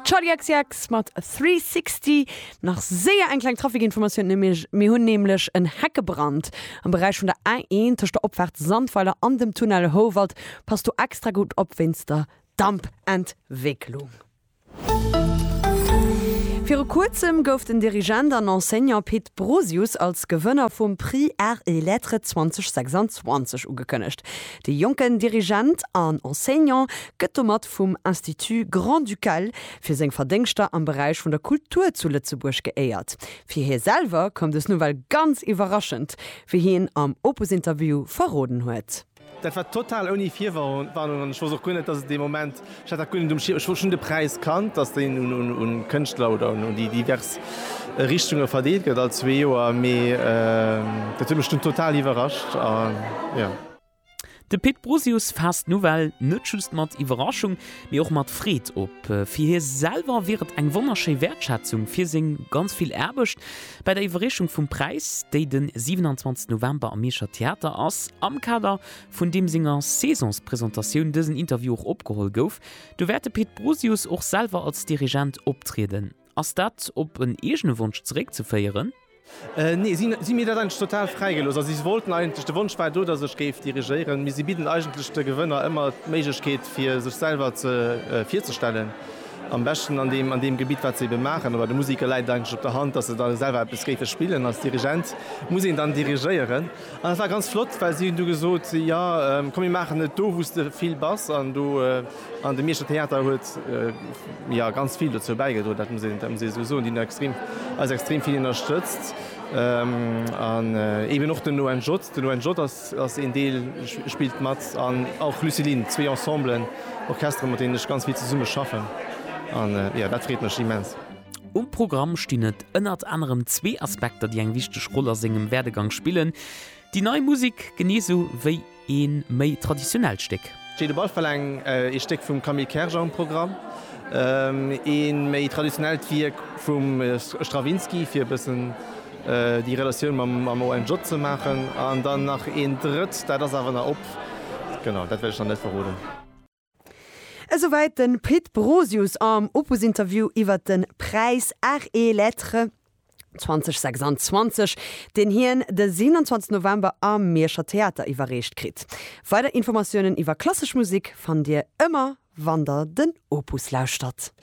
Charli XCX mat Three Sixty. Nach séier eng kleng Trafikinformatioun, nämlech mir hunn nämlech en Heckebrand am Beräich vun der A1 tëscht der Opfaart Sandweiler an dem Tunnel Houwald. Pass do extra gutt op wéinst der Dampentwécklung. Viru kuerzem gouf den Dirigent an Enseignant Pit Brosius als Gewënner vum Prix Arts et Lettres 2026 ugekënnegt. De jonken Dirigent an Enseignant gëtt domat vum Institut grand-ducal fir seng Verdéngschter am Beräich vun der Kultur zu Lëtzebuerg geéiert. Fir hie selwer koum dës Nouvelle ganz iwwerraschend, wéi hien am Opus-Interview verroden huet. Dat war total ouni Virwarnung an ech wosst och guer net, dass et dee Moment Ech hat dat guer net um Schierm. Ech wollt schonn de Präis kannt, dass deen un Kënschtler oder un déi divers Richtunge verdeelt gëtt all zwee Joer, mee dat huet mech dunn total iwwerrascht. De Pit Brosius faasst d'Nouvelle net just mat Iwwerraschung, mee och mat Freed op. Fir hie selwer wier et eng wonnerschéi Wäertschätzung fir seng ganz vill Aarbecht. Bei der Iwwerreechung vum Präis, déi den 27 November am Mierscher Theater ass, am Kader vun deem senger Saisonspresentatioun dësen Interview och opgeholl gouf, do wäert de Pit Brosius och selwer als Dirigent optrieden. Ass dat op en eegene Wonsch zeréckzeféieren? Nee, si hu mir dat eigentlech total fräi gelooss. Also si wollten eigentlech, de Wonsch war do, datt ech géif dirigéieren, mee si bidden eigentlech de Gewënner ëmmer d'Méiglechkeet fir sech selwer virzestellen, am beschten an deem an deem Gebitt wat se ebe maachen. Oder de Musiker läit et eigentlech op der Hand, datt se da selwer eppes géife spillen. Als Dirigent muss een dann dirigéieren. An dat war ganz flott, well si hunn du gesot, jo komm mir maachen et do wou s de vill bass an do. An de Mierscher Theater huet jo ganz vill dozou bäigedroen, dat muss een esou soen, déi hunn extrem eis extrem vill ënnerstëtzt an eben och den ONJ. Den ONJ ass een Deel spillt mat an och Lucilin, zwee Ensemblen, Orchestere mat deenen ech ganz vill zesumme schaffen an jo dat freet mech immens. Um Programm stinn et ënnert anerem zwee Aspekter, déi eng wichteg Roll a sengem Werdegang spillen, Déi nei Musek genee esou wéi ee méi traditionellt Stéck. Steet op alle Fall eng ee Stéck vum Camille Kerger um Programm, ee méi traditionellt Wierk vum Stravinsky, fir e bëssen déi Relatioun mam ONJ ze maachen, an dann nach een drëtt, dat ass awer nach op, genau, dat wéilt ech nach net verroden. Esouwäit de Pit Brosius am Opus-Interview iwwert de Präis Arts et Lettres 2026, deen hien de 27 November am Mierscher Theater iwwerreecht kritt. Weider Informatiounen iwwer klassesch Musek fannt Dir ëmmer wann Der den Opus lauschtert.